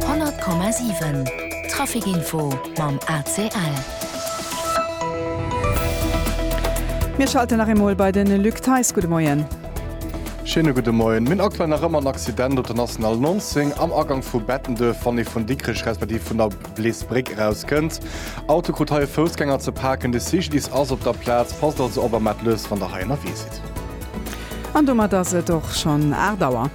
100,7 Trafic Info mam ACL. Mir schalten nach eemol bei den Luc Theis. Gudde Moien. Schéine gudde Moien. Mir hunn aktuell nach ëmmer en Accident op der National 19 am Agang vu Bettenduerf, wann ee vun Dikrech respektiv vun der Bleesbréck erauskënnt. Auto krut hei e Foussgänger ze paken. De CGDIS ass op der Plaz. Passt also op a maacht lues, wann der hei ënnerwee sidd. An domat ass et och schonn 8 Auer.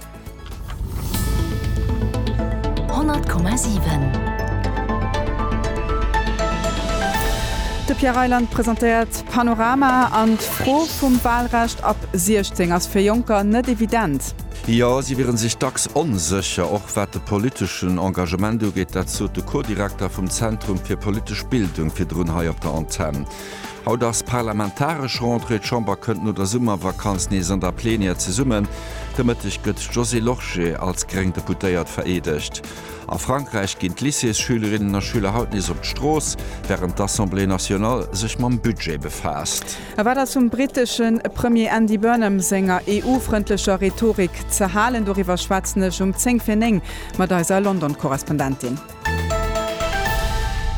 De Pierre Reyland presentéiert Panorama an d'Fro vum Wahlrecht ab 16 ass fir Jonker net evident. Jo, si wiere sech dacks onsécher, och wat de politeschen Engagement ugeet. Dat sot de Co-Direkter vum Zentrum fir politesch Bildung virdrun hei op der Antenn. Haut ass parlamentaresch Rentrée. D'Chamber kënnt no der Summervakanz nees an der Plenière zesummen. De Mëtteg gëtt d'Josée Lorsché als gréng Deputéiert vereedegt. A Frankräich ginn d'Lycéesschülerinnen a Schüler haut nees op d'Strooss, wärend d'Assemblée nationale sech mam Budget befaasst. A wat ass vum britesche Premier Andy Burnham senger EU-frëndlecher Rhetorik ze halen? Doriwwer schwätzen ech um zéng fir néng mat eiser London-Korrespondentin.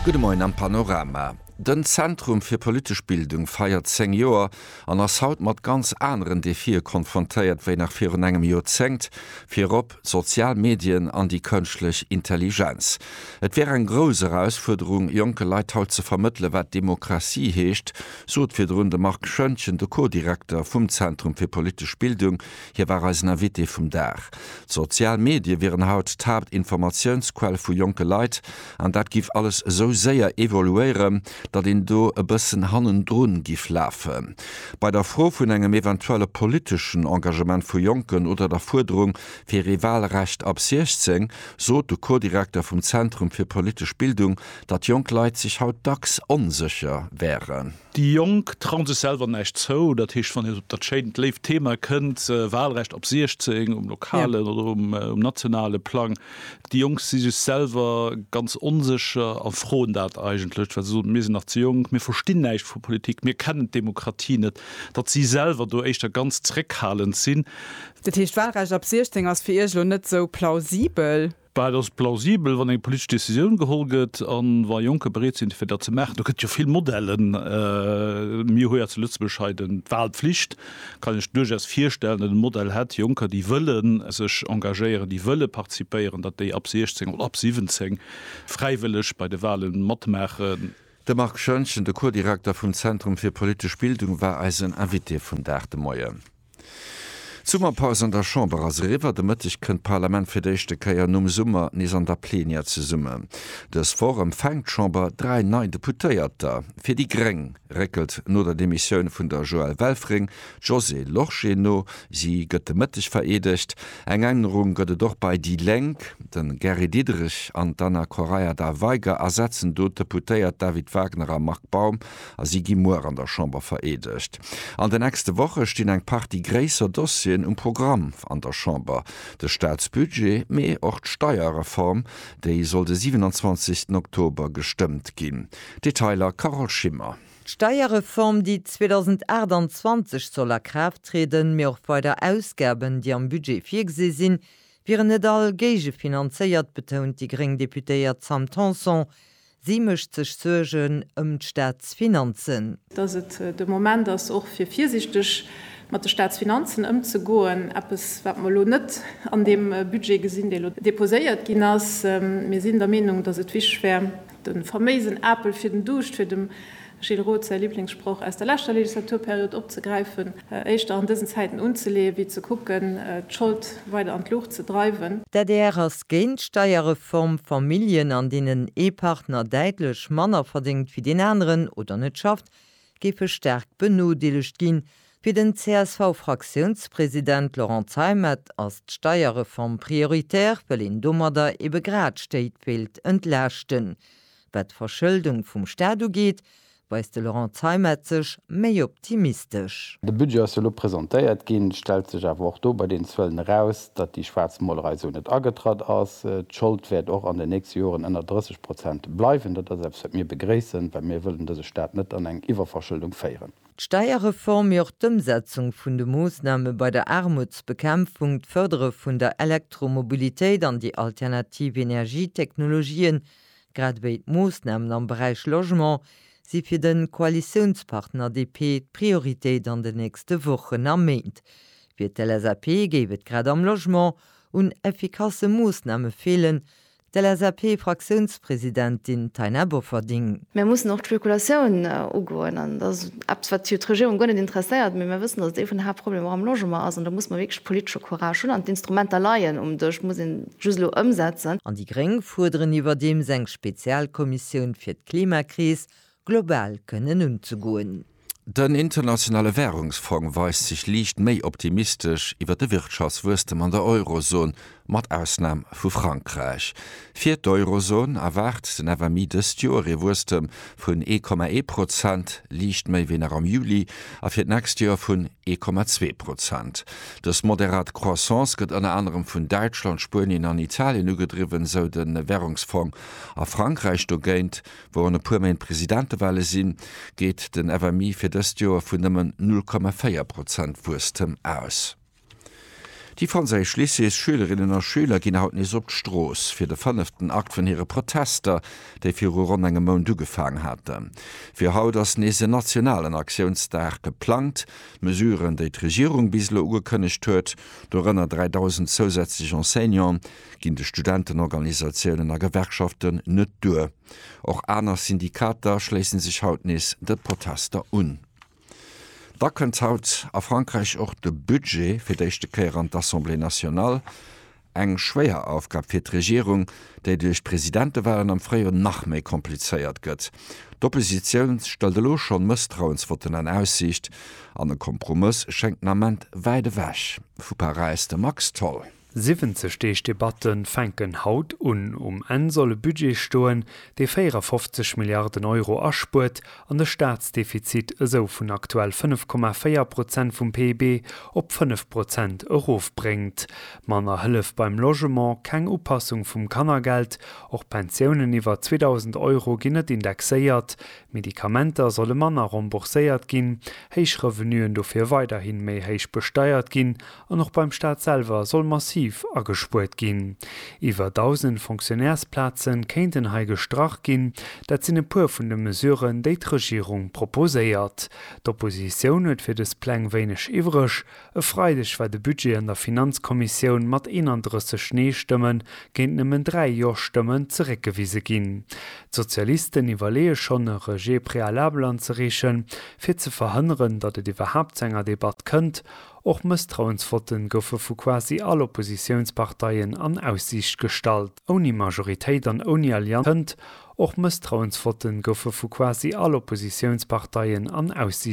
Gudde Moien am Panorama. Den Zentrum fir politesch Bildung feiert 10 Joer an ass haut mat ganz aneren Defie konfrontéiert wéi nach virun engem Joerzéngt, virop sozial Medien an déi kënschtlech Intelligenz. Et wär eng grouss Erausfuerderung, jonke Leit haut ze vermëttele wat Demokratie heescht, sot virdrun de Marc Schoentgen, de Co-Direkter vum Zentrum fir politesch Bildung. Hie war eisen Invité vum Dag. D'sozial Medie wieren haut d'Haaptinformatiounsquell vu jonke Leit. An dat giff alles esou séier evoluéieren, datt een do e bëssen hannendrun giff lafen. Bei der Fro vun engem eventuelle politeschen Engagement vu Jonken oder der Fuerderung fir ee Wahlrecht ab 16 sot de Co-Direkter vum Zentrum fir politesch Bildung, datt jonk Leit sech haut dacks onsécher wären. Déi Jonk trauen sech selwer näischt zou. Dat heescht, wann een op dat schéint, léift Thema kënnt, Walrecht ab 16, um lokalen oder um nationale Plang, déi Jonk si sech selwer ganz onsécher a froen dat eigentlech, well se soen, mir sinn nach ze jonk, mir verstinn näischt vu Politik, mir kennen d'Demokratie net, datt si selwer do éischter ganz zréckhalend sinn. Dat heescht, Walrecht ab 16 ass fir Iech elo net esou plausibel? Well et ass plausibel, wann eng politesch Decisioun geholl gëtt a wa Jonker bereet sinn, fir dat ze maachen. Do gëtt et jo vill Modellen. Mir hu jo zu Lëtzebuerg hei d'Wahlpflicht. Kann ech duerchaus virstellen, datt e Modell hätt, Jonker, déi wëlle sech engagéieren, déi wëlle participéieren, datt déi ab 16 oder ab 17 fräiwëlleg bei de Wahle matmaachen. De Marc Schoentgen, de Co-Direkter vum Zentrum fir politesch Bildung, war eisen Invité vum Dag de Moien. D'Summerpaus an der Chamber ass eriwwer. De Mëtteg kënnt d'Parlament fir d'éischte Kéier nom Summer nees an der Plenière zesummen. Dës Woch empfänkt d'Chamber dräi nei Deputéierter. Fir déi gréng réckelt no der Demissioun vun der Joëlle Welfring d'Josée Lorsché no. Si gëtt de Mëtteg vereedegt. Eng Ännerung gëtt et och bei déi Lénk. De Gary Diderich an d'Anna Correia da Veiga ersetzen do d'Deputéiert David Wagner a Marc Baum. a si gi muer an der Chamber vereedegt. An de nächste Woche stinn eng Partie gréisser Dossieren um Programm an der Chamber, de Staatsbudget, mee och d'Steierreform, déi soll de 27 Oktober gestëmmt ginn. Detailer Carole Schimmer. D'Steierreform, déi 2028 soll a Kraaft trieden, mee och weider Ausgaben, déi am Budget virgesi sinn, wieren net all géigefinanzéiert, betount déi gréng Deputéiert Sam Tanson. Si mécht sech Suergen ëm d'Staatsfinanzen. Datt et de Moment ass och fir virsiichteg mat de Staatsfinanzen ëmzegoen. Eppes wat mer elo net an deem Budget gesinn, dee elo deposéiert ginn ass. Mir sinn der Meenung, datt et wichteg wär, de faméisen Apel fir den Duuscht fir dem Gilles Roth, Säi Liblingssproch aus der leschter Legislaturperiod opzegräifen, éischter an dësen Zäiten unzeleeë wéi ze kucken, d'Schold weider an d'Luucht ze dreiwen. D'adr ass géint d'Steierreform. Familljen, an deenen ee Partner däitlech manner verdéngt wéi deen aneren oder net schafft, géife staark benodeelegt ginn. Fir den CSV-Fraktiounspresident Laurent Zeimet ass d'Steierreform prioritär, well een domadder ebe grad Stéit wéilt entlaaschten. Wat d'Verschëldung vum Staat ugeet, weist de Laurent Zeimet sech méi optimistesch. De Budget ass jo elo presentéiert ginn. Et stellt sech awer och do bei deenen Zuelen eraus, datt déi schwaarz Molerei esou net agetratt ass. D'Schold wäert och an den nächste Joren ënner 30 Prozent bleiwen. Dat ass eppes, wat mir begréissen, well mir wëllen dëse Staat net an eng Iwwerverschëldung féieren. D'Steierreform, mee och d'Ëmsetzung vun de Moossname bei der Aarmutsbekämpfung, d'Fërdere vun der Elektromobilitéit an déi alternativ Energietechnologien, Grad ewéi d'Moossnamen am Beräich Logement si fir de Koalitiounspartner DP d'Prioritéit an den nächste Wochen a Méint. Fir d'LSAP géif et grad am Logement un effikasse Moossname feelen, d'LSAP-Fraktiounspresidentin Taina Bofferding. Mir mussen och d'Spekulatioun ugoen an dat ass eppes, wat jo d'Regierung guer net interesséiert. Mee mir wëssen, datt et ee vun de Haaptproblemer och am Logement ass an do muss mer wierklech politesche Courage hunn an d'Instrumenter leien um Dësch. just elo ëmsetzen. An déi Gréng fuerderen iwwerdeems eng Spezialkommissioun fir d'Klimakris global kënnen unzegoen. Den internationale Währungsfong weist sech liicht méi optimistesch iwwer de Wirtschaftswuesstem an der Eurozon, mat Ausnam vu Frankräich. Fir d'Eurozon erwaart den FMI dëst Joer ee Wuesstem vun ee Komma ee Prozent, liicht méi wéi nach am Juli, a fir d'nächst Joer vun ee Komma zwee Prozent. Dës moderat Croissance gëtt ënner anerem vun Däitschland, Spuenien an Italien ugedriwwen, esou de Währungsfong. A Frankräich dogéint, wou an e puer Méint Presidentewale sinn, geet den FMI fir dëst Joer vun nëmmen null Komma véier Prozent Wuesstem aus. Déi franséisch Lycéesschülerinnen a schüler ginn haut nees op d'Strooss, fir de fënneften Akt vun hire Protester, déi viru ronn engem Mount ugefaang haten. Fir haut ass nees en nationalen Aktiounsdag geplangt. D'Mesuren, déi d'Regierung bis elo ugekënnegt huet, dorënner 3.000 zousätzlech Enseignante, ginn de Studentenorganisatiounen a Gewerkschaften net duer. Och aner Syndikater schléissen sech haut nees de Protester un. Da kënnt haut a Frankräich och de Budget fir d'éischte Kéier an d'Assemblée nationale. Eng schwéier Aufgab fir d'Regierung, déi duerch d'Presidentewalen am Fréijoer nach méi komplizéiert gëtt. D'Oppositioun stëllt elo schonn Mësstrauensvotten an Aussiicht an e Kompromëss schéngt den Ament wäit ewech vu Paräis. De Max Tholl. 70 Deeg Debatte fänken haut un. Um Enn soll e Budget stoen, dee 54 Milliarden Euro aspuert an de Staatsdefizit esou vun aktuell 5,4 Prozent vum PIB op 5 Prozent erofbréngt. Manner Hëllef beim Logement, keng Upassung vum Kannergeld, och Pensiounen iwwer 2.000 Euro ginn net indexéiert, Medikamenter solle manner rembourséiert ginn, héich Revenuen dofir weiderhi méi héich besteiert ginn An och beim Staat selwer soll massiv agespuert ginn. Iwwer 1.000 Fonctionnairesplaze kéinten hei gestrach ginn. Dat sinn e puer vun de Mesuren, déi d'Regierung proposéiert. D'Oppositioun huet fir dës Pläng wéineg iwwreg. E Freideg war de Budget an der Finanzkommissioun mat 31 Nee-Stëmme géint nëmmen 3 Jo-Stëmmen zeréckgewise ginn. D'Sozialisten iwwerleeë schonn, e Rejet préalable anzereechen, fir ze verhënneren, datt et iwwerhaapt zu enger Debatt kënnt. Och Mësstrauensvotten goufe vu quasi all Oppositiounsparteien an Aussiicht gestallt. Ouni Majoritéit an ouni Allianz kënnt. Och Mësstrauensvotten goufe vu quasi all Oppositiounsparteien an Aussiicht.